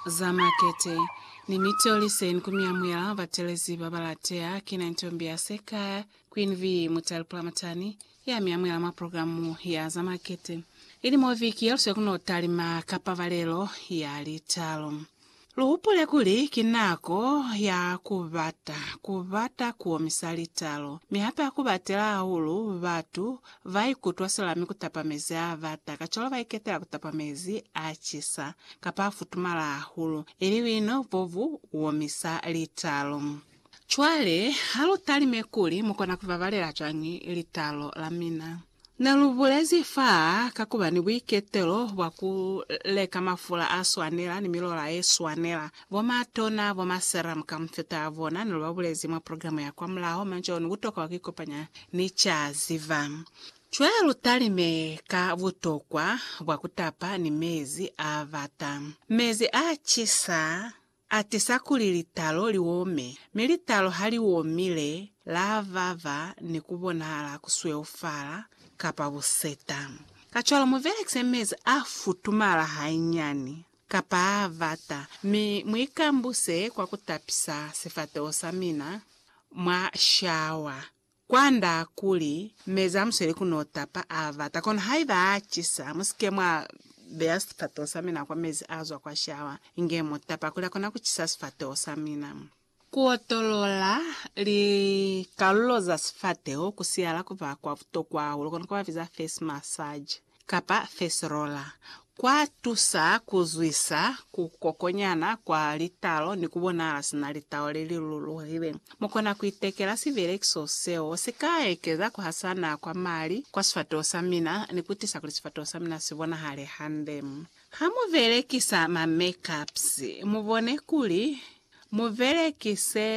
za makete, ni mi toli seni ku miamuyela batelezi ba ba lateha. Ki na ntombi ya sekaya, Queen V. Mutali Pulamatani, ya miamuyela mwa programu ya za makete. Ili mo viki ye luswe ku no talima ka pabalelo ya litalo. Luhupule kuli, ki nako ya kubata, kubata kuomisa litalo, mi hape akubatela hahulu batu baikutwa silami kutapa mezi abata, kacwalo baiketela kutapa mezi acisa, kapa afutumala hahulu, ili buino bo bu omisa litalo. Cwale, halutalime kuli mukona kubabalela cwañi litalo lamina. Ne lu bulezi fa ka ku ba ni buiketelo bwa ku leka mafula a swanela ni milola ye swanela. Bo matona, bo ma serum ka mufuta a bona ne lu ba bulezi mwa programa ya kwa mulaho, mwa nca onu ku tokwa ku ikopanya ni ca ziba. Cwale lu talime ka butokwa bwa ku tapa ni mezi a bata, mezi a cisa. Atisa kuli litalo li ome, mi litalo ha li omile, la vava ni ku bonahala ku sweufala, kapa buseta. Kacwalo mu belekise mezi a futumala hainyani, kapa a bata, mi mu ikambuse kwa ku tapisa sifateho sa mina mwa shawa, Kwanda kuli, Meza amuswele ku no tapa a bata, kono haiba a cisa, musike mwa beya sifateho sa mina kwa mezi a zwa kwa shawa, inge mu tapa kuli akona ku cisa sifateho sa mina. Ku otolola likalulo za sifateho ku siala ku ba kwa butokwa hahulu, kono ku ba biza face massage. kapa feserola, kwa tusa ku zwisa ku kokonyana kwa litalo ni ku bonahala sina litalo le li luluhile. Mu kona ku itekela sibelekiso seo si ka ekeza ku hasana kwa mali kwa sifatoho sa mina ni ku tisa kuli sifatoho sa mina si bonahale hande. Ha mu belekisa ma make-ups, mu bone kuli mu belekise.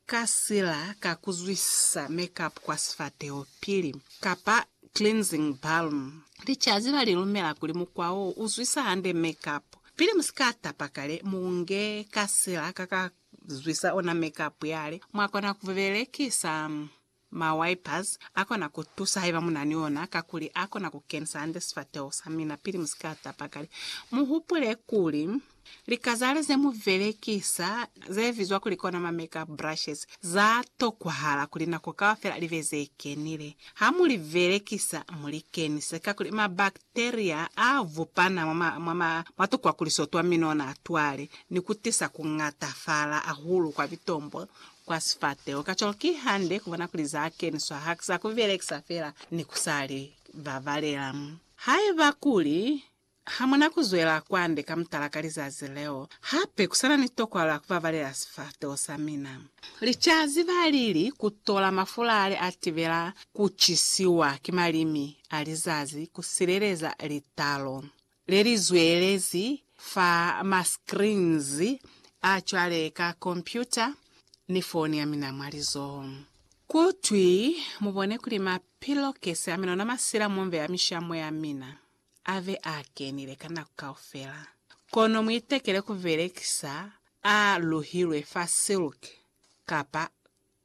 Ka sila ka kuzwisisa makeup kwa sifateho pili, kapa cleansing balm. Licazi la lilumela kuli mukwa wo uzwisa hande makeup. Pili musika tapa kale, muunge ka sila ka ka zwisa ona makeup yale mwakona kubelekisa. Ma wipers akona kutusa haiba munani ona kakuli akona kukenisa hande sifateho samina pili musika tapa kale. Muhupule kuli, likazale zemubelekisa zebizwa kuli kona ma makeup brushes za tokwahala kuli nako kaufela libe zekenile. Ha mulibelekisa mulikenise kakuli ma bacteria a vupana mwa mwa tukwakuliso twa minona twale ni kutisa kungatafala ahulu kwa bitombo kwa sifateho. Kacwalo ki hande ku bona kuli za keniswa haki za ku belekisa fela ni ku sa li babalela. Haiba kuli ha mu na ku zwela kwande ka mutala ka lizazi leo, hape ku sa na ni tokwalo ya ku babalela sifateho sa mina. Li ca ziba lili ku tola mafulale a tibela ku cisiwa ki malimi a lizazi ku sileleza litalo le li zwelezi fa ma screens a cwale ka kompyuta ni foni ya mina mwa lizoho. Ku twi, Mu bone kuli ma pillowcase a mina ona masila mo m'beya mishamo ya mina, a be a kenile ka nako kaufela. Kono mu itekele ku belekisa a luhilwe fa silk kapa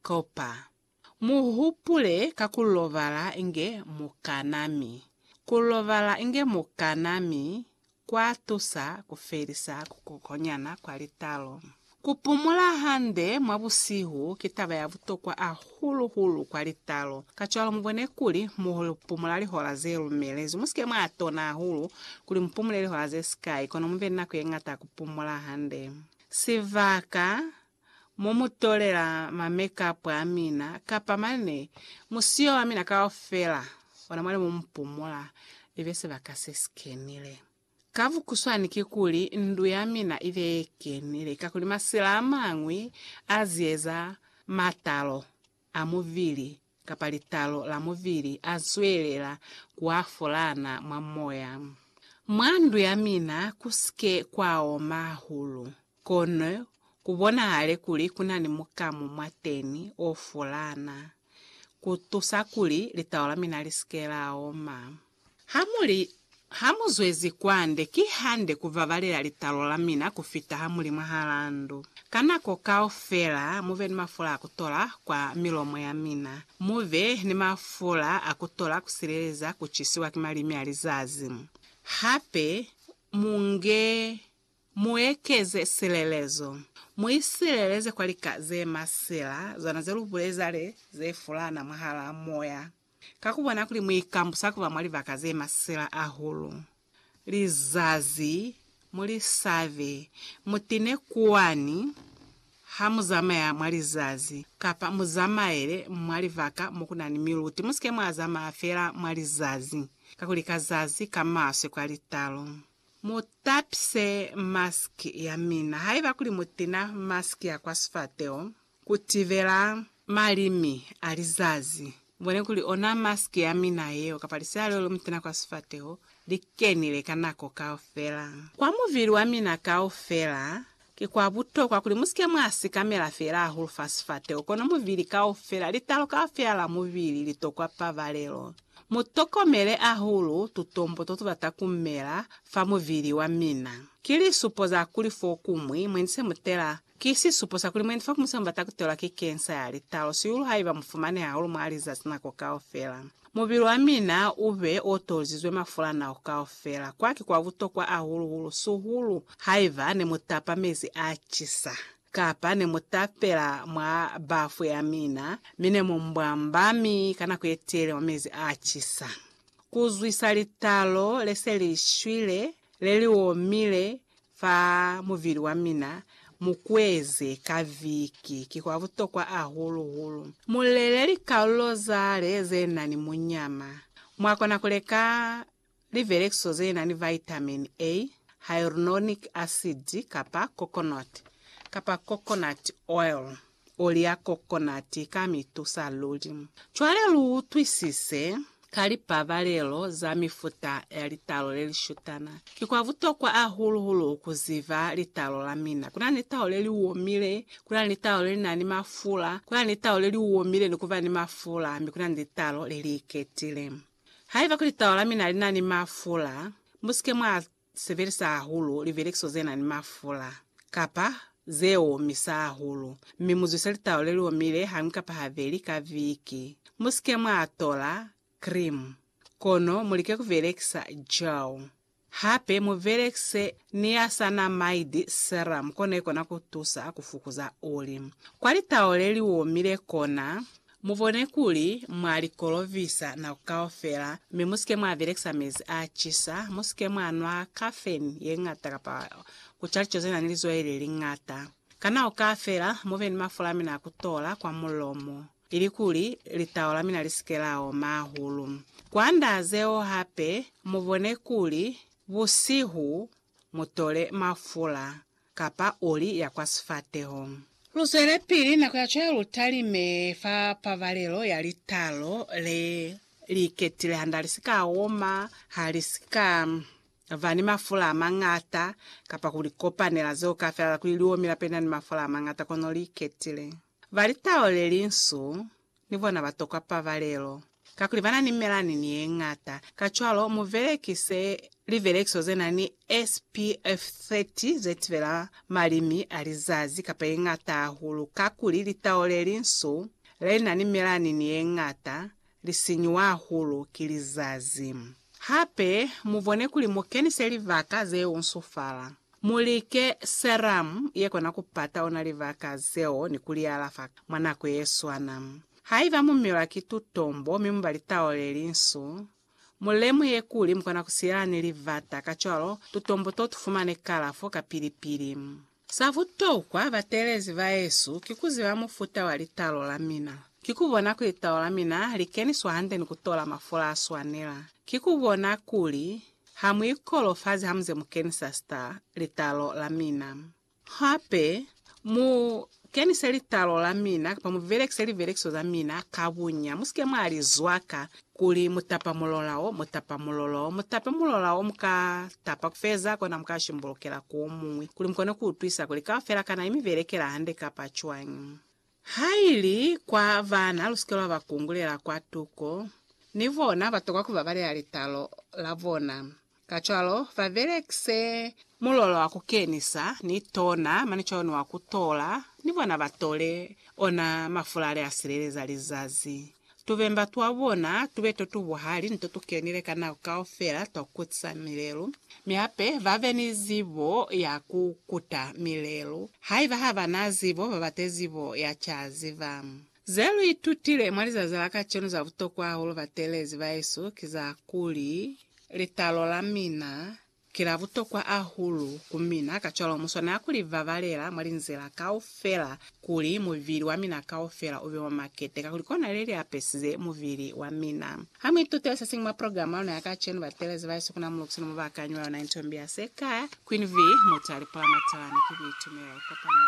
copper. Mu hupule ka ku lobala inge mu kana mi ku lobala inge mu kana mi kwa tusa ku felisa ku kokonyana kwa litalo. Ku pumula hande mwa busihu ki taba ya butokwa ahulu hulu kwa litalo. Kacwalo mu bone kuli mu pumula lihola ze lumelezwi. Mu si ke mwa tona hahulu kuli mu pumule lihola ze sikai, kono mu be ni nako ye ngata ya ku pumula hande. Sibaka. Mu mu tolela ma makeup a mina, kapa mane musiyo wa mina kaufela, ona mwali mu mu pumula, ibe sibaka se si kenile. Ka bukuswani kikuli, ndu ya mina ibe ye kenile, kakuli masila amañwi a zieza matalo. a mubili kapa litalo la mubili a zwelela ku afolana mwa moya. Mwa ndu ya mina ku si ke kwa oma hahulu, kono ku bonahale kuli ku na ni mukamu mwateni o folana, ku tusa kuli litalo la mina li si ke la oma. Ha mu li, Ha mu zwezi kwande, ki hande ku babalela litalo la mina ku fita ha mu li mwahal'a ndu. Ka nako kaufela mu be ni mafula a ku tola kwa milomo ya mina, mu be ni mafula a ku tola ku sileleza ku cisiwa ki malimi a lizazi. Hape, mu nge, mu ekeze silelezo. Mu isileleze kwa lika ze masila, zona ze lu buleza le, ze fulana mwahal'a moya. Ka ku bona kuli mu ikambusa ku ba mwa libaka ze masela ahulu, lizazi mu li sabe, mu tine kwani ha mu zamaya mwa lizazi, kapa mu zamaele mwa libaka mo ku na ni miluti. Mu si ke mwa zamaya fela mwa lizazi, kakuli ka zazi ka maswe kwa litalo. Mu tapise masiki ya mina. Haiba kuli mu tina masiki ya kwa sifateho, Ku tibela malimi a lizazi, bone kuli ona mask ya mina yeo kapa lisela leo le mutena kwa sifateho li kenile ka nako kaufela. Kwa mubili wa mina kaufela, ki kwa butokwa kuli mu si ke mwa sikamela fela hahulu fa sifateho, kono mubili kaufela. Litalo kaufela la mubili li tokwa pabalelo. Mu tokomele hahulu tutombo to tu bata ku mela fa mubili wa mina. Ki lisupo za kuli fokuñwi mwe ni se mu tela Ki sisupo sa kuli mwendi fa ku muselo bata kutelwa ki kensa ya litalo, sihulu haiba mufumane hahulu mwa lizazi nako kaufela. Mubili wa mina ube o tolizizwe mafula nako kaufela. Kwa ki kwa butokwa ahulu-hulu, sihulu haiba ne mu tapa mezi a cisa, kapa ne mu tapela mwa bafu ya mina, mi ne mu mbwamba mi ka nako ye telele mwa mezi a cisa. Ku zwisa litalo le se li shwile Le li omile fa muvili wa mina, mu kueze ka viki, ki kwa butokwa hahulu hulu mu lele likalulo za le ze na ni munyama. Mwa kona ku leka livelekiso ze na ni vitamin A, hyaluronic acid kapa coconut kapa coconut oil. oli ya kokonati ka mi tusa luli. Cwale lu utwisise, ka lipabalelo za mifuta ya litalo le li shutana, ki kwa butokwa hahulu hulu ku ziba litalo la mina. Ku na ni litalo le li omile, ku na ni litalo le li na ni mafula, ku na ni litalo le li omile ni ku ba ni mafula, mi ku na ni litalo le li iketile. Haiba kuli litalo la mina li na ni mafula, mu si ke mwa sebelisa hahulu livelekiso ze na ni mafula kapa ze omisa hahulu, mi mu zwise litau le li omile hañwi kapa habeli ka viki. Mu si ke mwa tola krimu, kono mu like ku velekisa gel. Hape mu velekise niacinamide serum, kona ikona ku tusa ku fukuza oli kwa litau le li omile kona. Mubone kuli mwa li kolovisa nako kaufela, mi musike mwa belekisa mezi a cisa, musike mwa nwa kafeni ye ñata kapa kuca lico zenani lizwai le li ñata. Ka nako kaufela mube ni mafula amina a kutola kwa mulomo, ilikuli litau lamina lisike la oma hahulu. Kwanda zeo hape, mubone kuli busihu mutole mafula. kapa oli ya kwa sifateho. Lu zwelepili nako ya cwalo lu talime fa pabalelo ya litalo le li iketile handa li si ka oma, ha li si ka ba ni mafula a mañata, kapa ku likopanela zeo kafelala kuli li omi lapena ni mafula a mañata kono li iketile. Ba litau le linsu ni bona ba tokwa pabalelo, kakuli ba na ni melani ni ye ñata. Kacwalo, mu belekise libelekiso ze na ni SPF 30 ze tibela malimi a lizazi kapa ye ñata hahulu, kakuli litau le linsu le na ni melani ni ye ñata li sinyuwa hahulu ki lizazi. Hape, mu bone kuli mu kenise libaka ze usufala. Mulike serum ye kona ku pata ona libaka zeo ni ku li alafa mwa nako ye swana. Haiba mu milwa ki tutombo mi mu ba litao le linsu, mu lemuhe kuli mu kona ku silela ni libata, kacwalo tutombo to tu fumane kalafo kapili pili. Sa butokwa, bateelezi ba Yesu ki ku ziba mufuta wa litalo la mina. Ki ku bona kuli litalo la mina li keniswa hande ni ku tola mafula a swanela. Ki ku bona kuli Ha mu ikolofazi ha muze mu kenisa star litalo la mina. Hape, mu kenise litalo la mina kapa mu belekise libelekiso za mina ka bunya. Mu si ke mwa li zwaka kuli mu tapa mulola wo, mu tapa mulola wo. Mu tape mulola wo mu ka tapa ku feza, kona mu ka shimbulukela ku wo muñwi kuli mu kone ku utwisa kuli kaufela kana i mi belekela hande kapa cwañi. Haili kwa bana lusike lwa ba kungulela kwa tuko, ni bona batokwa ku babalela litalo la bona. Kacwalo, ba belekise mulolo wa ku kenisa ni tona mane cwalo ni wa ku tola, ni bona ba tole ona mafulale a sileleza lizazi. Tubemba twa bona tube to tu buhali ni to tu kenile ka nako kaufela twa ku kutisa milelu, mi hape ba be ni zibo ya ku kuta milelu. Haiba ha ba na zibo, ba bate zibo ya ca ziba. Ze lu itutile mwa lizazi la kacenu za butokwa hahulu batelezi bahesu ki za kuli, litalo la mina Ki la butokwa ahulu ku mina, kacwalo mu swanela ku li babalela mwa linzila kaufela kuli mubili wa mina kaufela u be wa makete, kakuli kona le li apesize mubili wa mina. Ha mu itutile se siñwi mwa programa ya luna ya kacenu, batelezi ba Yesu ku na mu lukiso ne mu ba kanyi lwa yona intombi ya se ka Queen Vee, mutu a lipula matawa, mi ki buitumelo. Kopanyo.